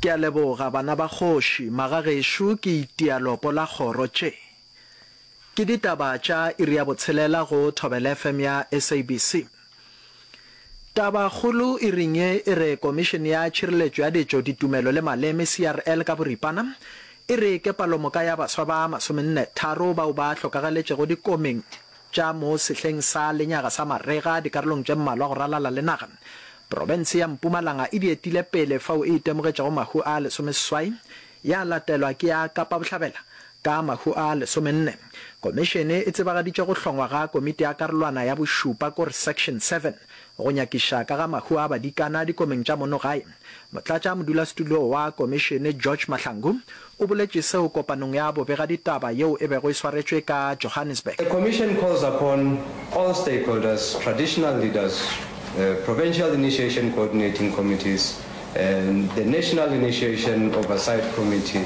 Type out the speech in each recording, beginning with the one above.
Ke a leboga, bana ba kgoši, magagešo ke itia lopo la kgoro. Tše ke ditaba tša iri ya botshelela go Thobela FM ya SABC. Tabakgolo iring ye e re Komišene ya Tšhireletšo ya Ditšo, Ditumelo le Maleme, CRL, ka boripana e re ke palomoka ya baswa ba masomenne tharo bao ba hlokagaletšego dikomeng tša mo sehleng sa lenyaga sa marega dikarolong tše mmalwa go ralala le naga. Profense ya Mpumalanga e di etile pele fao e itemogetšego mahu a lesomeseswai, ya latelwa ke ya Kapa Bohlabela ka mahu a lesomenne. Komišene e tsebagaditše go hlongwa ga Komiti ya Karolwana ya Bošupa, ko re Section Seven, Go nyakiša ka ga mahu a badikana dikomeng tša mono gae, motlatša modulasetulo wa komišene George Mahlangu o boletše seo kopanong ya bobegaditaba yeo e bego e swaretšwe ka Johannesburg. The Commission calls upon all stakeholders, traditional leaders, provincial initiation coordinating committees and the National Initiation Oversight Committee,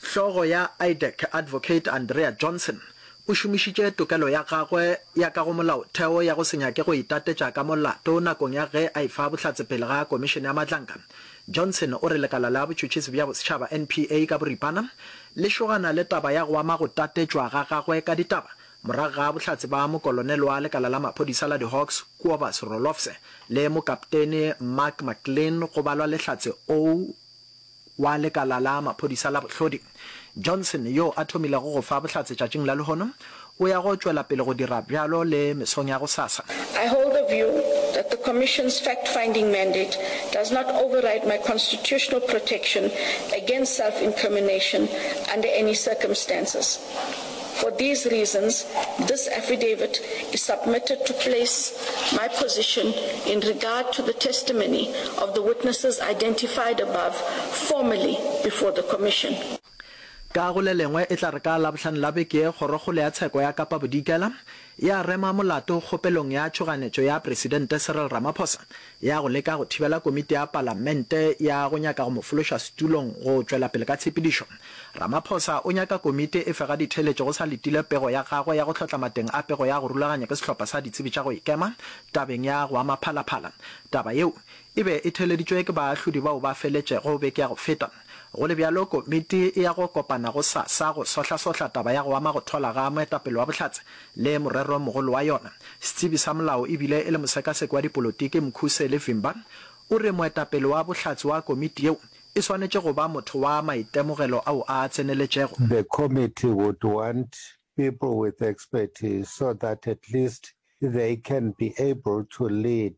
Hlogo ya IDEC, Advocate Andrea Johnson, o šomišitše tokelo ya gagwe ya ka go Molaotheo ya go se nyake go itatetša ka molato nakong ya ge a efa bohlatse pele ga Komišene ya Matlanka. Johnson o re lekala la botšhotšhisi bja bosetšhaba, NPA, ka boripana le šogana le taba ya go ama go tatetšwa ga gagwe ka ditaba morago ga bohlatse ba mokolonele wa lekala la maphodisa la di-Hawks, Kuobas Rolofse, le mokaptene Mark McLean go balwa lehlatse o wa lekala la maphodisa la bohlodi, Johnson, yo a thomilego go fa bohlatse tšatšing la lehono, o ya go tšwela pele go dira bjalo le mesong ya gosasa. I hold the view that the Commission's fact-finding mandate does not override my constitutional protection against self-incrimination under any circumstances. For these reasons, this affidavit is submitted to place my position in regard to the testimony of the witnesses identified above formally before the Commission. Ka go le lengwe, e tla re ka Labohlano la beke ye, Kgorokgolo ya Tsheko ya Kapa Bodikela e a rema molato kgopelong ya tšhoganetšo ya Presidente Cyril Ramaphosa ya go leka go thibela komiti ya Palamente ya go nyaka go mo fološa setulong go tšwelapele ka tshepedišo. Ramaphosa o nyaka komiti e fe ga ditheeletšo go sa letile pego ya gagwe ya go hlotla mateng a pego ya go rulaganya ke sehlopha sa ditsebi tša go ikema tabeng ya go ama phalaphala. Taba yeo e be e theeleditšwe ke baahlodi bao ba feletšego beke ya go feta. Go le bjalo, komiti e ya go kopana gosasa go sohlasohla taba ya go ama go thola ga moetapele wa Bohlatse le moreromogolo wa yona. Setsebi sa molao e bile e le mosekaseki wa dipolotiki Mkhuseli Vimba o re moetapele wa Bohlatse wa komiti yeo e swanetše go ba motho wa maitemogelo ao a tseneletšego. The committee would want people with expertise so that at least they can be able to lead